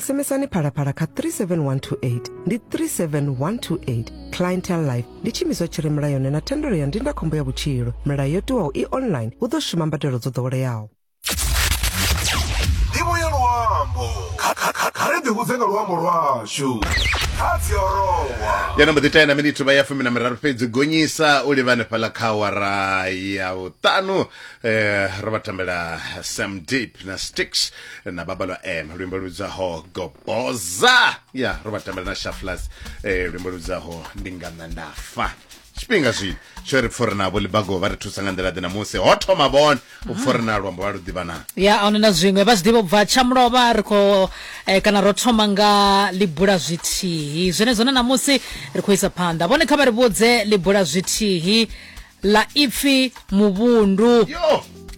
sms-ani phalaphala kha 37128 ndi 37128 clientele life ndi tshiimiswa tshi re mulayoni na thendelo ya ndindakhombo ya vhutshilo milayo yo tiwaho i online hu ḓo shuma mbadelo dzo ḓoweleaho ndivho ya luambo Kha- kha- kha- kha ri ḓivhudze nga luambo lwashu kha dziorowa ya nombo ḓi tena minithu vha ya fumi na miraru fhedzi gonyisa u livha hanefhaḽa kha awara ya vhuṱanu um ro vha tambela sam deep na sticks na babalwa m luimbo ludzaho goboza ya ro vha tambela na shaflas eh, luimbo ludzaho ndi nga nṋa nda fa tshifhinga zwi tsho ri pfori navho libago vha ri thusa nga nḓila ḓe namusi ho thoma vhone u pfori na luambo vha lu ḓivha na ya ahuna na zwiṅwe vha zwi ḓivha ubva tshamulovha ri khou eh, kana ro thoma nga libula zwithihi zwenezwo na namusi ri khou isa phanḓa vhone kha vha ri vhudze libula zwithihi ḽa ipfi muvhundu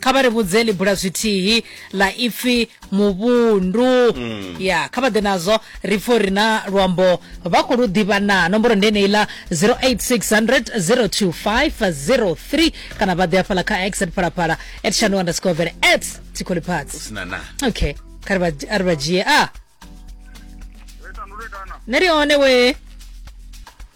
kha vha ri vhudze ḽi bula zwithihi ḽa ipfi muvhundu mm. ya kha vha ḓe nazwo ri pfo ri na luambo vha khou lu ḓivha na nomboro ndi eneiḽa 0860025003 kana vha ḓe afhaḽa kha x at phalaphala at shanu underscore vele at tikholiphatsi okay kha ri vha dzhie a ne ri one wee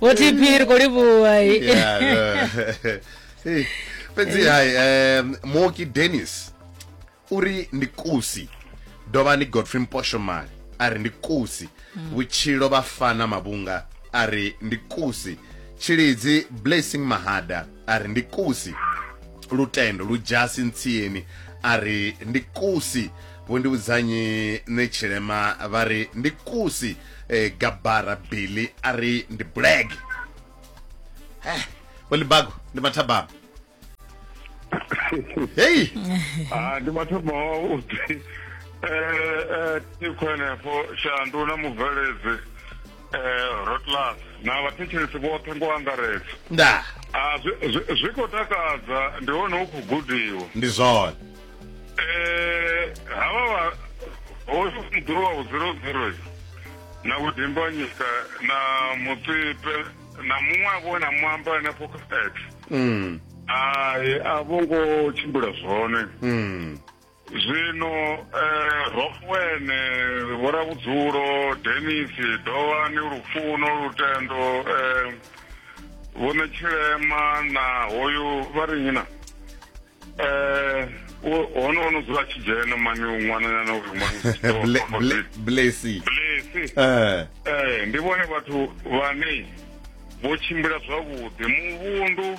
wothi phiri kuli vuwai Yeah, yeah. Hey, fhedzi hai um, moki dennis uri ndi kusi dovha ndi godfrey mposhomali a ri ndi kusi vhutshilo vhafana mavhunga a ri ndi kusi tshilidzi blessing mahada a ri ndi kusi lutendo lu dzhasi ntsieni a ri ndi kusi vho ndi vhudzanyi nṋe tshilema vha ri ndi kusi eh, gabara billy a ri ndi blag eh, vho libago ndi mathabama heyi Ah, ndi mathomo o ḓi eh eh tikho henefho shandu na mubveledzi eh, rotlas na vhathetshelesi vhoṱhe ngo angaredza nda ah, zwi khou takadza ndi hone hu khou gudiwa ndi zwone eh, havha hoyu muḓuru wa vhuziro ziro na vhudimbanyika na mutsipe na muṅwe a vhona muamba hanefho kha x mm. ai a vho ngo tshimbila zwone mm. zwino eh, rokwene vhoravhudzulo denis dowani lufuno lutendo eh, vhone tshilema na hoyu vha ri nyina eh, hone ono dzula tshi dzhena mani ṅwananyana uri ṅwanblesi eh. eh, ndi vhone vhathu vhane vho tshimbila zwavhuḓi muvhundu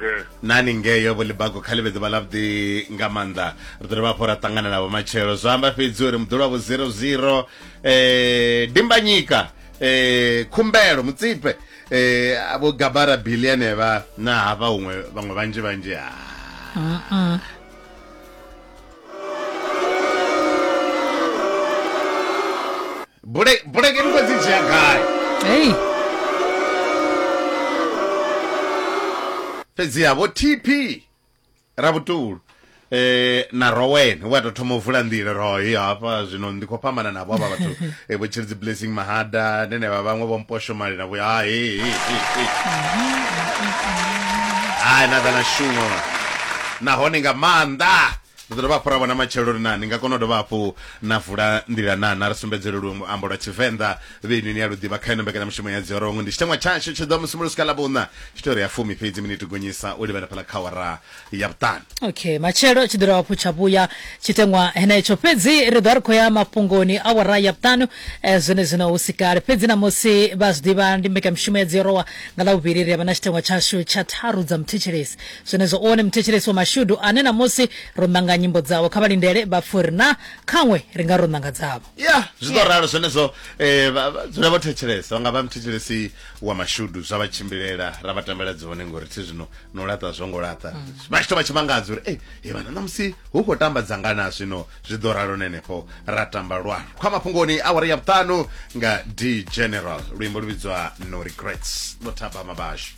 eh. nani ngeyo vho libago kha livhedzi vha lavhuḓi nga maanḓa ri ḓo dovha hafho ra ṱangana navho matshelo zwa amba fhedzi uri muḓolo wavho zero zero um eh, dimbanyika um eh, khumbelo mutsipe um vho gabara bili anevha na hafha huṅwe vhaṅwe vhanzhi vhanzhi ha Bule bulege ni khou dzi dzhia gai Hey. fhedziha vho tp ravhutulu eh na rowen wa tou thoma u vula nḓila royi hafha zwino ndi khou fhambana navho avha vhathu eh, vho tshilidzi blessing mahada nenevha vhaṅwe vho mposho mali navho ha he he he, he. hai na kana shumo nahone nga maanḓa ri ḓo dovha hafhu ra vhona matshelo uri na ni nga kona u dovha hafhu na vula nḓila na na ri sumbedzele luambo lwa tshivenḓa vheni ni a lu ḓivha kha ino mbekanyamushumo ya dziorongwe ndi tshiteṅwa tshashu tshi ḓo musi mulo swika ḽa vhuṋa tshi tea uri ya fumi fhedzi miniti gonyisa u livhela fhala kha wara ya vhuṱanu okay matshelo tshi ḓira hafhu tsha vhuya tshiteṅwa henetsho fhedzi ri ḓo ri khou ya mafhungoni a wara ya vhuṱanu eh, zwene zwino hu si kale fhedzi namusi vha zwi ḓivha ndi mbekanyamushumo ya dziorowa nga ḽa vhuvhili ri avha na tshiteṅwa tshashu tsha tharu dza muthetshelesi Zwenezwo u wone muthetshelesi wa mashudu ane namusi ro nanga nyimbo dzavho. Kha vha lindele vha pfe uri na khanwe ri nga ro nanga dzavho. Ya, zwi ḓo ralo zwenezwo. Eh, vha, vha dzule vho thetshelesa. Vha nga vha muthetshelesi wa mashudu zwa vha tshimbilela, ra vha tambela dzone ngori thi zwino no laṱa zwo ngo laṱa. Vha tshi tou vha tshi mangadza uri, Ei, he vhana namusi hu khou tamba dzanga na zwino. Zwi ḓo ralo na henefho ra tamba lwa Khwa Mafhungoni awara ya vhuṱanu nga D'General. Luimbo lu vhidzwa No Regrets, Vho Thabama vhashu.